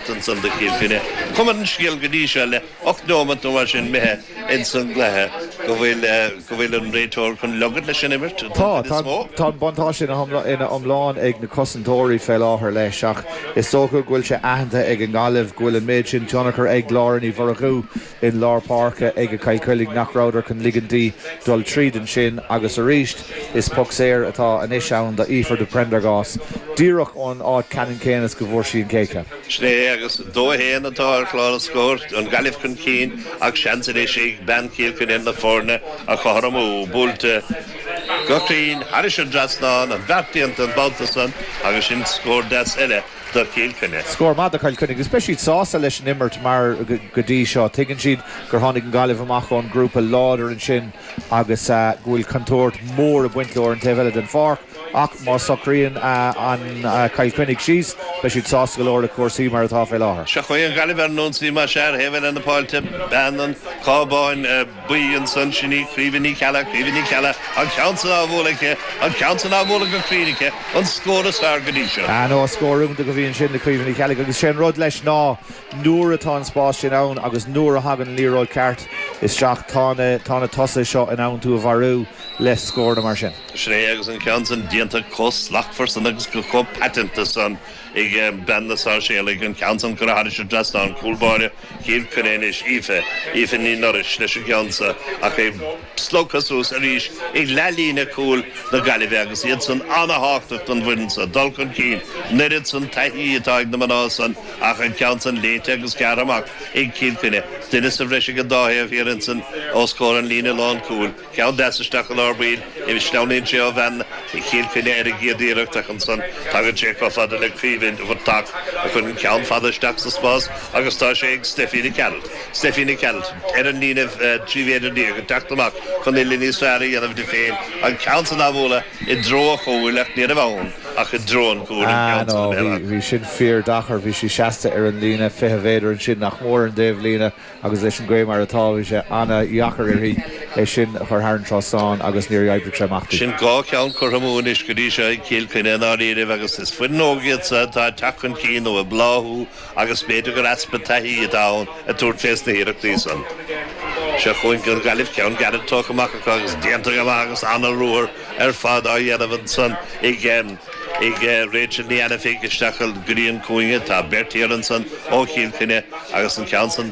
Ansan san do Chill Chainnigh. Cuma ar an scéal go dtí seo le ocht neomat nó mar sin imithe ins an gcluiche go bhfuil go bhfuil an réiteoir chun ligint leis an imirt don chuid is mó. Tá, tá, tá an buntáiste ina hiomlán, ina iomlán ag na cosantóirí fé láthair leis ach is dócha go bhfuil sé aitheanta ag an nGaillimh go bhfuil an méid sin tionchar ag Laura Ní Mhurchú i lár páirce aige Cill Chainnigh nach rabhadar chun ligint di dul tríd ansin agus arís is poc saor atá anois ann d'Aoife de Priondargás díreach ón áit ceannann céanna is go bhfuair sí an chéad cheann. Sin é agus 2-1 atá ar chlár an scóir, an Gaillimh chun cinn ach seans anois ag bean Chill Chainnigh na foirne a chothromú. Buailte go cruinn thairis an dtrasnán, an bheart déanta an babhta san agus sin scór deas eile. do Chill Chainnigh. Scór maith do Chill Chainnigh agus beidh siad sásta leis an imirt mar go dtí seo tuigeann siad gur tháinig an Gaillimh amach ón grúpa láidir ansin agus go bhfuil contúirt mhór ag baint leo ar an taobh eile den pháirc ach má socraíonn Cill Chainnigh síos beidh siad sásta go leor le cúrsaí mar atá fé láthair. Seo chugainn Gaillimh ar an ionsaí más ea ar thaobh eile na páirce beanann cábáin. Bhí ansan. Sin í Caoimhe Ní Cheallaigh, Caoimhe Ní Cheallaigh, an ceann san á bhualadh aici, an ceann san á bhualadh go cruinn aici, an scór is fearr go dtí seo. Ah no, scór iontach a bhí ansin do Chaoimhe Ní Cheallaigh agus sé an rud leis ná nuair atá an spás sin ann agus nuair a thagann an liathróid ceart isteach tá na, tá na tosaithe seo in ann tú a mharú le scóranna mar sin. Sin é agus an ceann san déanta comh slachtmhar san agus go comh paiteanta san. ag bean na Sáirséalach, an ceann san curtha thairis an dtrasnán, cúl báire Chill Chainnigh anois, Aoife, Aoife Ní Noiréis, leis an gceann san, ach é slogtha suas arís ag leathlíne cúil na Gaillimhe agus iad san ana-thábhachtach don bhfoireann san, dul chun cinn an oiread san taithí atá ag na mná san ach an ceann san léite agus gearrtha amach ag Cill Chainnigh, duine sa bhreis ag an dá thaobh thiar ansan os comhair an líne lán cúil. Ceann deas isteach i lár baill anois. Sleamhnaíonn sé ó bhean Chill Chainnigh ar an gcéad iarracht ach ansan tagann sé chomh fada le Caoimhe Ní Mhuircheartaigh a chuireann ceann fada isteach sa spás agus tá sé ag Steffi Nic Gearailt. Steffi Nic Gearailt ar an líne trí mhéadar déag ag teacht amach chun uillinn níos fearr a dhéanamh di féin, an ceann san á bhualadh i dtreo an chúil ach ní raibh ann ach i dtreo an chúil an ceann san a bhéarradh. Bhí sin fíordheacair, bhí sí seasta ar an líne fiche mhéadar ansin nach mór ar an dtaobh líne. Agus leis an gaoth mar atá, bhí sé ana-dheacair uirthi é sin a chur thar an trasnán agus níor oibrigh sé amach di. Sin dhá cheann curtha amú anois go dtí seo ag Cill Chainnigh i ndáiríribh agus is foireann óg iad seo atá ag teacht chun cinn nó ag bláthú agus b'fhéidir gur easpa taithí atá ann ag tabhairt fés na hiarrachtaí san. Seo chugainn go Gaillimh ceann gairid tógtha amach acu agus déanta go maith agus ana-ruathar ar fad á dhéanamh ansan i gceann Ag Rachel Ní Ainifig isteach go dtí an cúinne. Tá beirt thiar ansan ó Chill Chainnigh agus an ceann san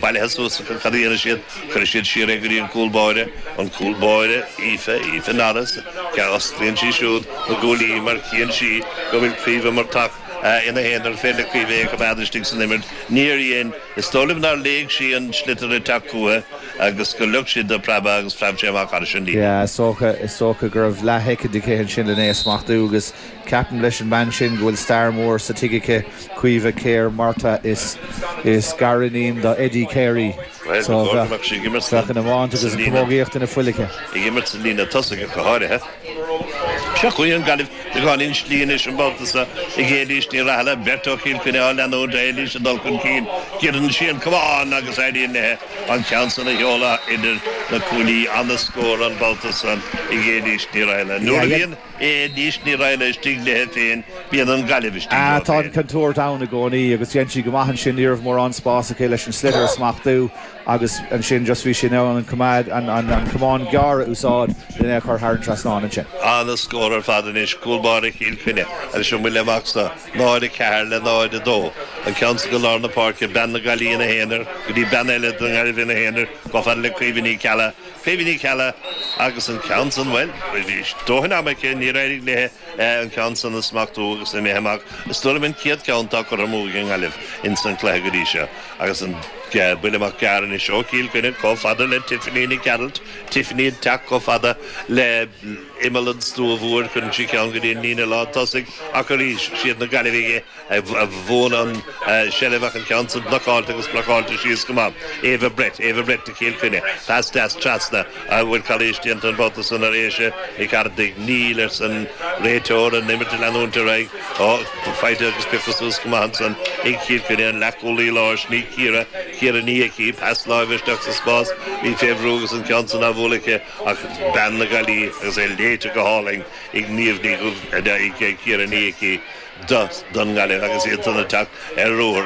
bailithe suas acu. Cad a dhéanfaidh siad? Cuirfidh siad siar é go dtí an cúl báire. An cúl báire, Aoife, Aoife Norris. Agus osclaíonn sí siúd na guaillí mar chíonn sí go bhfuil Caoimhe Murtagh ina haonar. An féidir le Caoimhe é a choimeád istigh san imirt. Níor dhein. Is dóigh liom nár léigh sí an sliotar ag teacht chúiche agus gur leog sí dó preabadh agus phreab sé amach thairis an líne. Is dócha go raibh leath-shoicind aici ansin len' é a smachtú agus ceapaim leis an mbean sin go bhfuil stair mhór sa tigh aici, Caoimhe Keher Murtagh, is gar-iníon do Eddie Keher í. So tá an iomáint agus camógaíocht ina fuil aici ag imirt sa líne tosaigh go háirithe. Seo chugainn an Gaillimh ag ionsaí anois an babhta so ag Éilís Ní Rathaille, beirt ó Chill Chainnigh á leanúint Éilís ag dul chun cinn, giorraíonn sí an camán agus éiríonn léi an ceann san a sheoladh idir na cuaillí. Ana-scór an babhta san ag Éilís Ní Rathaille. Nuair a bhíonn Éilís Ní Rathaille istigh léi féin, bíonn an Gaillimh istigh leo féin. Tá an chontúirt ann i gcónaí agus dhein sí go maith ansin. Ní raibh mórán spáis aici leis an sliotar a smachtú Agus ansin just bhí sí in ann an coimeád, an, an, an camán gearr a úsáid len é a chur thar an trasnán ansin. Ana-scór ar fad. Anois, cúl báire Chill Chainnigh leis an mbuille amach so, 0-4 le 0-2. An ceann san go lár na páirce, bean na Gaillimhe ina haonar go dtí bean eile na Gaillimhe ina haonar, chomh fada le Caoimhe Ní Ceallaigh, Caoimhe Ní Ceallaigh agus an ceann san, bhuel, bhí dóthain ama aici, níor éirigh léi. an ceann san a smachtú agus imithe amach is dóigh liom an chéad ceann atá curtha amú ag an nGaillimh ins an cluiche go dtí seo agus an buille amach gearr anois ó Chill Chainnigh chomh fada le Tiffany Nic Gearailt Tiffany ag teacht chomh fada le imeall an stua mhóir cuireann sí ceann go dtí an líne lán tosaigh ach arís siad na Gaillimhigh a bhuann an tseilbh ach an ceann san blocáilte agus blocáilte síos go maith. Éabha Brett, Éabha Brett do Chill Chainnigh. Pas deas trasna an bhfuil calaois déanta an babhta san ar Aisha Nic Ardaigh. Níl arsa an réiteoir an imirt ag leanúint ar aghaidh. Tá faighte agus pioctha suas go maith ansan ag Cill Chainnigh. An leathchúlaí láir sin í Ciara, Ciara Ní Icí. Pas láimhe isteach sa spás. Bhí fé bhrú agus an ceann san á bhualadh aici ach bean na Gaillimhe agus é léite go hálainn. ag Niamh Ní Dhubhthaigh ag iarraidh an í aici don nGaillimh agus í siúd ag teacht ar ruathar.